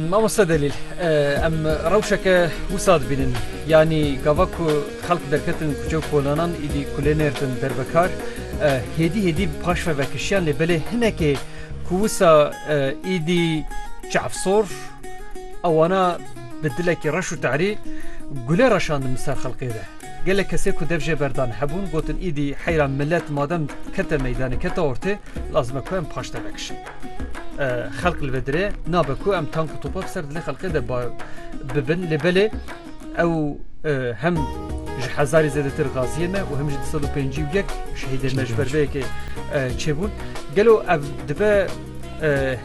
Mamoste Delîl, em rewşeke wisa dibînin. Yanî gava ku xelk derketin kuçe û kolanan îdî kulê nêrtin derbekar. Hêdî hêdî bi paşve vekişiyan lê belê hinekê ku wisa îdî çavsor a wana bi dilekî reş û te'rî gule reşandin bi ser xelkê de. Gelek kesê ku dev jê berdan hebûn gotin îdî heyra milet madem kete meydanê kete ortê lazim e ku em paşte vekişin. xelk li vê dirê nabe ku em tank û topa bi ser dilê xelkê de bibin lê belê ew hem ji hezarî zêdetir gaziyê me û hem ji sed û pêncî û yek şehîdê me ji ber vê yekê çêbûn gelo ev dibe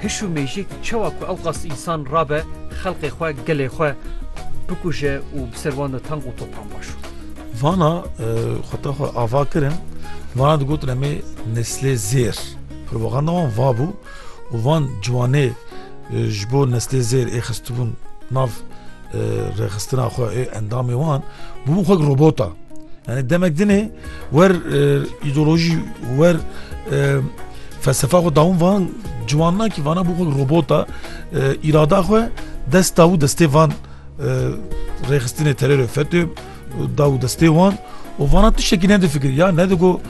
hiş û mêjik çawa ku ew qas însan rabe xelqê xwe gelê xwe bikuje û bi ser wan de tank û topan baş Vana xwe te xwe ava kirin vana digotin em ê neslê zêr. Propaganda wan va bû û van ciwanê ji bo neslê zêr ê xistibûn nav rêxistina xwe ê endamê wan bûbûn xwe robota. Yani demek dinê wer îdeolojî wer felsefa xwe dawin van ciwan nakî vana bû xwe robota îrada xwe dest dawû destê van rêxistinê terorê FETÖ da û destê wan û vana tiştekî nedifikir ya nedigo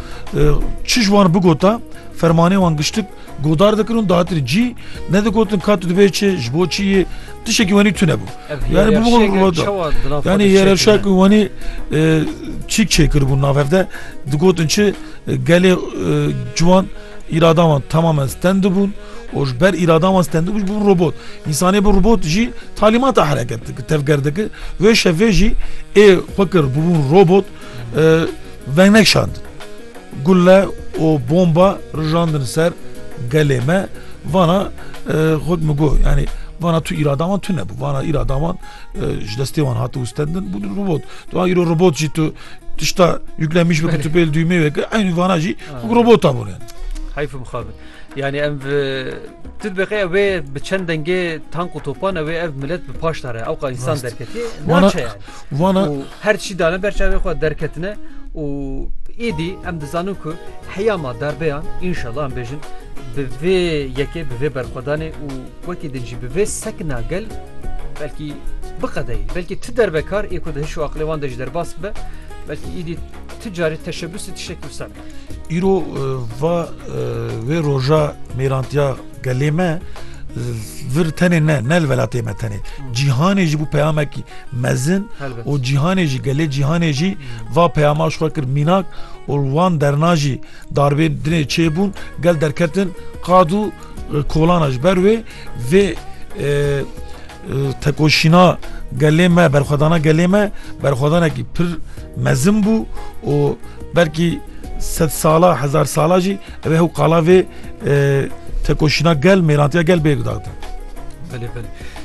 çi ji wan bigota fermanê wan giştik godar dikin û datir cî nedigotin ka tu dibê çi ji bo çi yê tiştekî wenî tune bû yani yani yerevşek û wenî çîk çêkiribûn navevde digotin çi gelê ciwan Îrada wan temamen stend bûn û ji ber îrada wan stend bû jî bûn robot. Însanê bi robot jî talîmata hereket dikir, tevger dikir. Wê şevê jî ê xwe kir bûbûn robot vengnek şandin. Gule û bomba rijandin ser gelê me vana xwe min got yanî vana tu îrada wan tune bû. Vana îrada wan ji destê wan hati wistendin bûn robot. Tu a îro robot jî tu Tişta yüklen miş bikir tüpel düğme ve ki aynı vana jî robota bûne. Hayf bixabin. Yani em tu dibêqe ev ê bi çend dengê tank û topan ew ê ev millet bi paş dare ew qa insan derketiye naçe yani. Vana her çî dane ber çavê xwe derketine û êdî em dizanin ku heyama darbeyan inşallah em bêjin bi vê yekê bi vê berxwedanê û Wekî din jî bi vê sekna gel belkî biqedeyî belkî ti dervekar ê ku di hiş û aqilê wan de ji derbas bibe belkî îdî ti carî teşebusî tiştek wisa be. Îro va wê roja mêrantiya gelê me vir tenê ne ne li velatê me tenê cîhanê jî bû peyamekî mezin û cîhanê jî gelê cîhanê jî va peyama ji xwe kir mînak û wan derna jî Darbên dinê çêbûn, gel derketin qad û kolana ji ber wê vê tekoşîna gelê me berxwedana gelê me berxwedanekî pir mezin bû û belkî sed sala hezar sala jî ev hew qala vê tekoşîna gel mêrantiya gel bê gudaxdin.